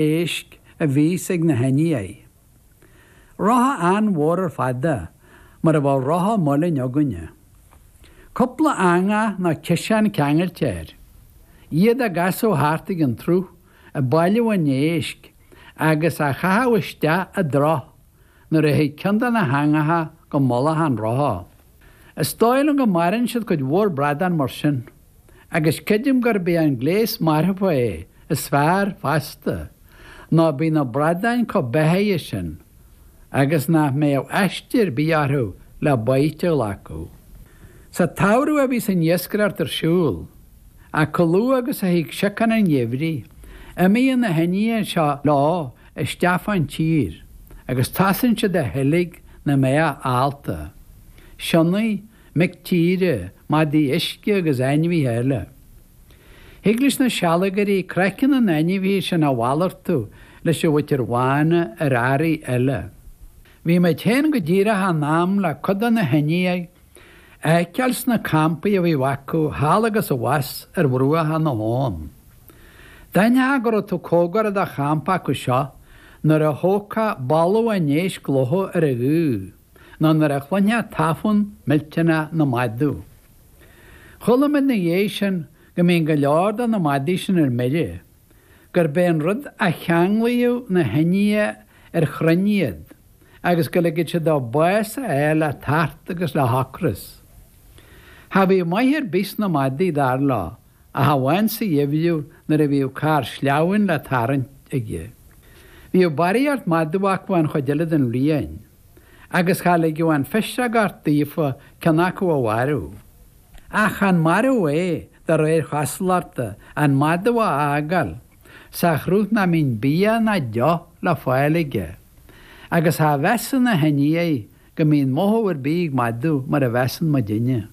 éisc a bhíos ag na hIndiaigh. Rotha an-mhór ar fad é, mar a bheadh rotha muilinn againne. Cúpla eangach nó ciseán ceangailte air. Iad á gcasadh thart ag an tsruth, ag bailiú an éisc, agus á chaitheamh isteach i dtrach nuair a thig ceann de na heangacha go mullach an rotha. Is dóigh liom go marann siad cuid mhór bradán mar sin. agus creidim gurb é an gléas marfa é is fearr fosta, nó bíonn na bradáin chomh beathaithe sin agus nach mbeadh aiste ar bith orthu le baoite a ghlacadh. Sa tsamhradh a bhíos an iascaireacht ar siúl, ach chomh luath agus a thig siocán an gheimhridh, imíonn na hIndiaigh seo leo isteach fán tír agus tosaíonn siad a sheilg na mbeathach allta, sionnaigh, mic tíre, madaí uisce agus ainmhithe eile. Thig leis na sealgairí craiceann na n-ainmhithe sin a mhalartú leis an mhuintir bhána ar earraí eile. Bhí muid féin go díreach in am le cuid de na hIndiaigh a fheiceáil sna campaí a bhí acu thall agus abhus ar bhruacha na habhann. D'aithneofá go raibh tú comhgarach do champa acu seo nuair a thógfá boladh an éisc ag lobhadh ar an ghaoth. nó nuair a chluinfeá tafann millteanach na madadh. Chuala muid ina dhiaidh sin go mbíonn go leor de na madaí sin ar mire, gurb é an rud a cheanglaíodh na hIndiaigh ar chrainn iad agus go ligeadh siad dóibh bás a fháil le tart agus le hocras. Cha bhíodh maith ar bith sna madaí, dar leo, ach amháin sa gheimhreadh nuair a bhíodh carr sleamhain le tarraingt aige. Bhíodh barraíocht madadh acu an chuid eile den bhliain, agus cha ligeadh an phiseogacht daofa ceann acu a mharú. Ach chan marú é, de réir chosúlachta, an madadh a fhágáil sa chruth nach mbíonn bia ná deoch le fáil aige, agus cha mheasann na hIndiaigh go mbíonn mothú ar bith ag madadh mar a mheasann muidinne.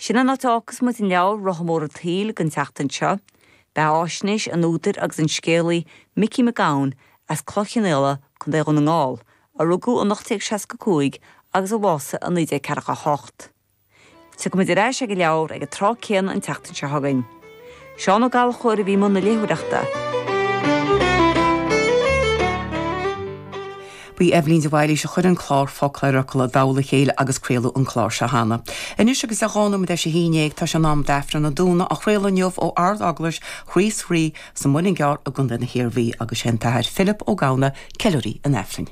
Sin an áit a fhágfas muid an leabhar Rotha Mór an tSaoil don tseachtain seo. Beathaisnéis an údair agus an scéalaí Micí Mac Gabhann as Cloich Chinn Fhaola, Co. Dhún na nGall, a rugadh in 1865 agus a bhásaigh in 1948. Tiocfaimid ar ais ag an leabhar ag an tráth céanna an tseachtain seo chugainn. Seán Ó Gallchóir a bhí i mbun na léitheoireachta. Ba í Eibhlín de Bhailís a chuir an clár Focal ar Fhocal i dtoll a chéile agus craoladh an clár seo cheana. Anois agus é dhá nóiméad tar éis a haon dhéag, tá sé in am d'Aifreann an Domhnaigh, á chraoladh inniu ó Ard-Eaglais Chríost Rí sa Mhuileann gCearr i gContae na hIarmhí, agus sé an tAthair Philip Ó Gamhna ceiliúraí an Aifrinn.